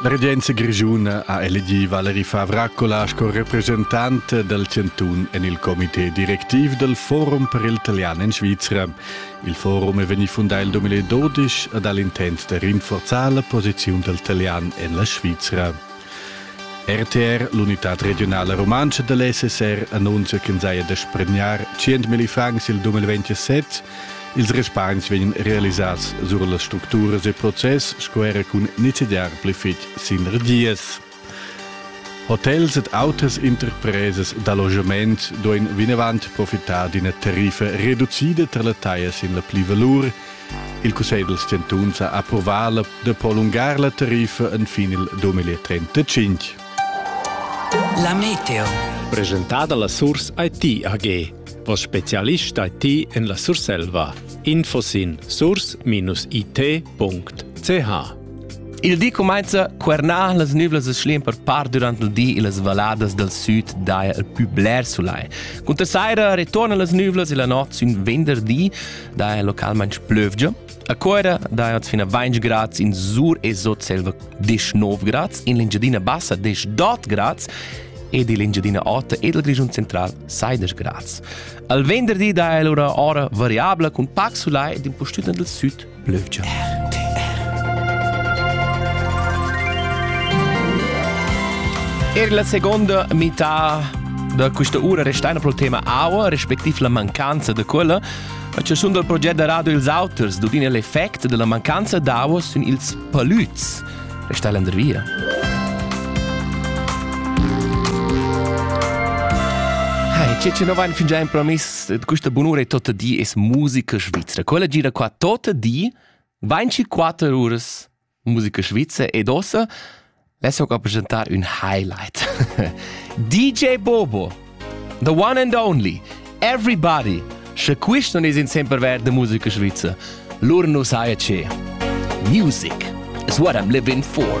La regenza grischuna ha elegì Valeri Favracola sco represchentant dal chantun en il comité directiv dal Forum per il talian en Svizra. Il forum è vegnì fundà il 2012 ed ha l'intent da rinforzar la posiziun dal talian en la Svizra. RTR, l'unità regionala rumantscha da l'SSR, annunzia ch'ins haja da spregnar 100.000 francs il 2027 Ils respargns vegnan realisads sur las structuras e process sco era cun nizzegiar pli fitg sinergias. Hotels ed autas interpresas d'allogament duain vinavant profitar d'ina tariffa reducida tar la taglia sin la plivalur. Il Cussegl dals chantuns ha approvà da prolungar la tariffa fin il 2035. La Meteo. Presentada la Source IT AG. Vo specialist da ti en la Surselva. Info sin sours-it.ch Il di cumainza quernar las nüvlas e schlim per par durant il di e las valadas dal süd daja il pü bler sulai. Cunter saira retorna las nüvlas e la not sün venderdi daja localmaing plövgia A Cuera daja fina 20 grads in Sur e Sotselva 19 grads, in l'Engiadina Bassa 18 grads ed l'Engiadina Ota ed il Grischun Central 16 grads. Al venderdi daja lura ora variabla cun pac sulai ed in postüna del süd plövgia. Er la seconda metà da questa ura restaina pro il tema aua, respectiv la mancanza da quella. A chaschun dal proget da radio Ils auters dudina l'effect della mancanza d'aua sün ils palüts. Resta l'ender via. Hai, ce ce no vain fingià impromiss eh, questa bunura e totta di es musica svizzera. Quella gira qua totta di 24 uras musica svizzer ed ossa Let's talk representar un highlight. DJ Bobo, the one and only, everybody. Sche quist non es in sempre verd de musica svizzer, lur nu saja ce. Music is what I'm living for.